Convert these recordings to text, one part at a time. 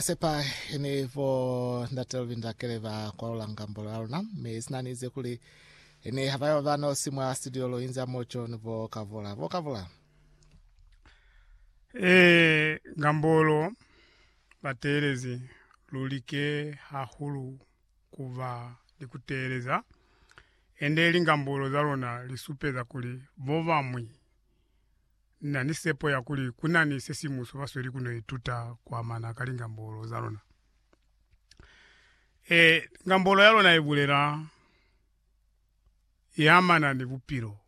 Sepa ni bo ndate Lubindakele ba kwalula ngambo la luna, mi sina nize kuli ni ha bayo ba nosi mwa studio lo inza mo John bo Kavula. Bo Kavula. Eh, ngambolo bateelezi lulike hahulu kuba ni kuteeleza, ende lingambolo za lona lisupeza kuli bobamwi Ni na ni sepo ya kuli ku na ni se si mu subasweli ku no ituta ku amana ka lingambolo za lona. Ee, ngambolo ya lona i bulela i amana ni bupilo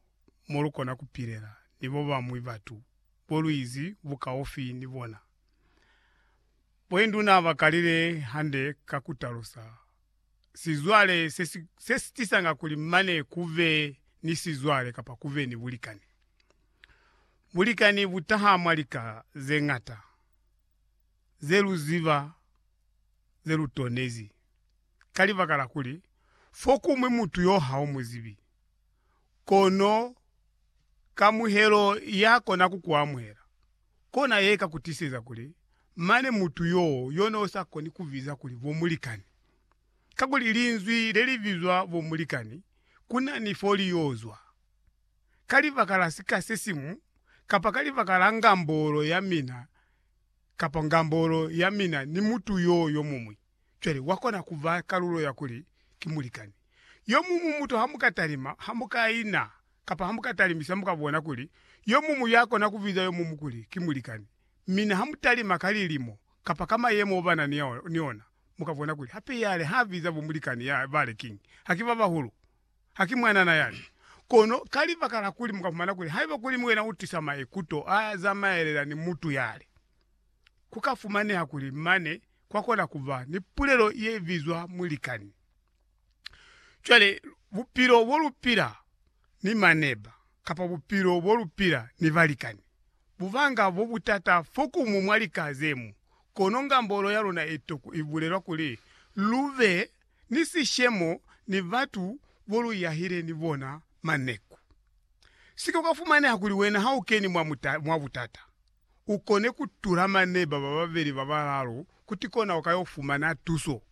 mo lu kona ku pilela ni ba bañwi batu bo lu izi bukaufi ni bona. Boinduna ba kalile hande ka ku talusa. sizwale se si, se si tisanga kuli mane ku be ni sizwale kapa ku be ni bulikani. Bulikani bu taha mwa lika ze ñata ze lu ziba ze lu tonezi ka libaka la kuli fokuñwi mutu yo ha u mu zibi. Kono kamuhelo ya kona ku ku amuhela, Kona ye ka ku tiseza kuli mane mutu yo yo no sa koni ku biza kuli bo mulikani. Kakuli linzwi le li bizwa bo mulikani ku na ni fo li yo zwa. Ka libaka la sika se siñwi, kapa ka libaka la ngambolo ya mina kapa ngambolo ya mina ni mutu yo yo muñwi. cwale wa kona ku ba kalulo ya kuli ki mulikani. Yo muñwi mutu ha mu ka talima, ha mu ka ina, kapa ha mu ka talimisa mu ka bona kuli yo muñwi ya kona ku biza yo muñwi kuli ki mulikani. Mina ha mu talima ka lilimo kapa ka mayemo o ba na ni ona, mu ka bona kuli hape yale ha biza bo mulikani ya bale kiñi, ha ki ba bahulu. Ha ki mwanana yani. Kono ka libaka la kuli mu ka fumana kuli haiba kuli wena u tisa maikuto a zamaelela ni mutu yale, ku ka fumaneha kuli mane kwa kona ku ba ni pulelo ye bizwa mulikani. Cwale, bupilo bo lu pila ni maneba kapa bupilo bo lu pila ni balikani, bu banga bo butata fokumu mwa lika ze mu. Kono ngambolo ya luna i to ku bulelwa kuli lu be ni sishemo ni batu boluyahile ni bona maneku. Sika ukafumaneha kuli wena haukeni mwa muta, mwa butata, ukone kutula maneba bababeli babalaalu kuti kona ukayo fumana tuso.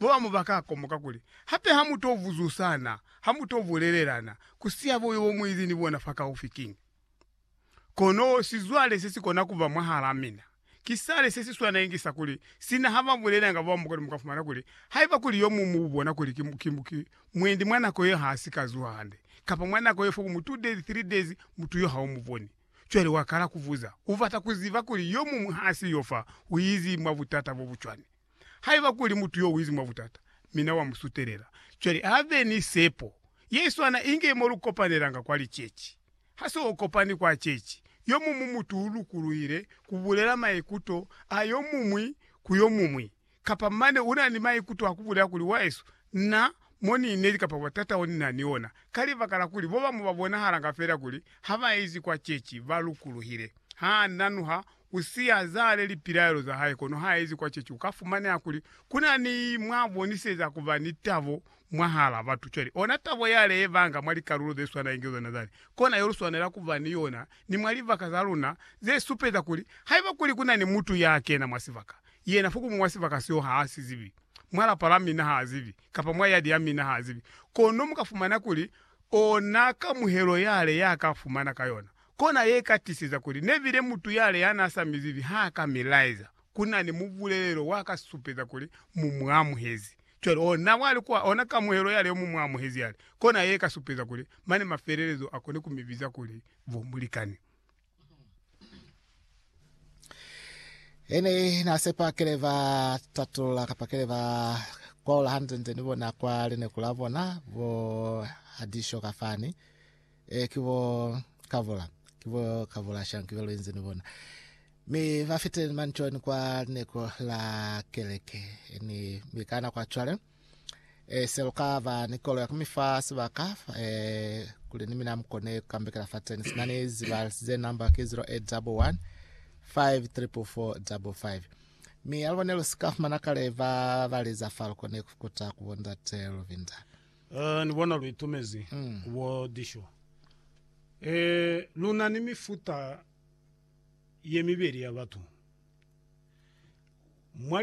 Babamu baka komoka kuli, Hape hamuto buzusana, hamuto bulelelana, kusiha boyo bomuizi ni bona fakaufi kiñi? Kono sizwale sesikona kuba mwahalaa mina, ki sale sesiswana inge sa kuli, sina haba bulelanga bao mukona mukafumana kuli, haiba kuli yomuñwi muubona kuli ki, ki, ki mwendi mwa nako ye haasika zuha hande, kapa mwa nako ye four mu two days, three days, mutu yo haumuboni. Cwale wakala kubuza, ubata kuziba kuli yomuñwi haasiyo fa, uizi mwa butata bobucwani. Haiba kuli mutu yo uizi mwa butata, mi Na wa mu sutelela. Cwale a be ni sepo yeswana inge mo lu kopanelanga kwa liceci. Ha se u kopani kwa ceci, yo muñwi mutu u lukuluhile ku bulela maikuto a yo muñwi ku yo muñwi, kapa mane u na ni maikuto a ku bulela kuli, Wahesu, na mo ni inezi kapa butata o ni na ni ona. Ka libaka la kuli bobamu ba bonahalanga fela kuli ha ba izi kwa ceci, ba lukuluhile. Ha nanuha Ku si azale lipilaelo za hae kono ha ezi kwa chechi, u ka fumaneha kuli ku na ni mwa boniseza ku ba ni tabo mwahal'a batu. Cwale, ona tabo ya le ye banga mwa likalulo ze swana inge zona zale, kona yo lu swanela ku ba ni yona ni mwa libaka za luna ze supeza kuli haiba kuli ku na ni mutu ya kena mwa sibaka, yena fokumu mwa sibaka seo ha a si zibi, mwa lapa la mina ha a zibi, kapa mwa yadi ya mina ha a zibi, kono mu ka fumana kuli ona kamuhelo ya le ya ka fumana ka yona. Kona ye ka tiseza kuli nebile mutu yale ya n'a sa mi zibi ha ka mi laeza ku na ni mubulelelo wa ka supeza kuli mu mu amuhezi. Cwale, oh, na wali kwa ona kamuhelo yale yo mu mu amuhezi yale, kona ye ka supeza kuli mane mafelelezo a koni ku mi biza kuli bo mulikani. Ene na sepa kile ba tatulula kapa kile ba kwaula hantle nte ni bona kwa lineku la bona bo hadisho ka fani. Eh, ki bo Kavula. Ki bo Kavula shang ki be lu inzi ni bona. Mi ba fitile ni manchoni kwa lineko la keleke. Eh, ni mi ka na kwa chwale. Eh, se lu ka ba ni kolo ya kumifa sibaka, eh, kuli ni mina mukone kambekela fa teni. Sina ni ziba ze number ki 0811 544555. Mi alubone lu sika fumana kale ba baliza fa lukone kukuta kubonda te Luvinda. Eh, ni bona lu itumezi ku bo disho. Eh, lu na ni mifuta ye mibeli ya batu. Mwa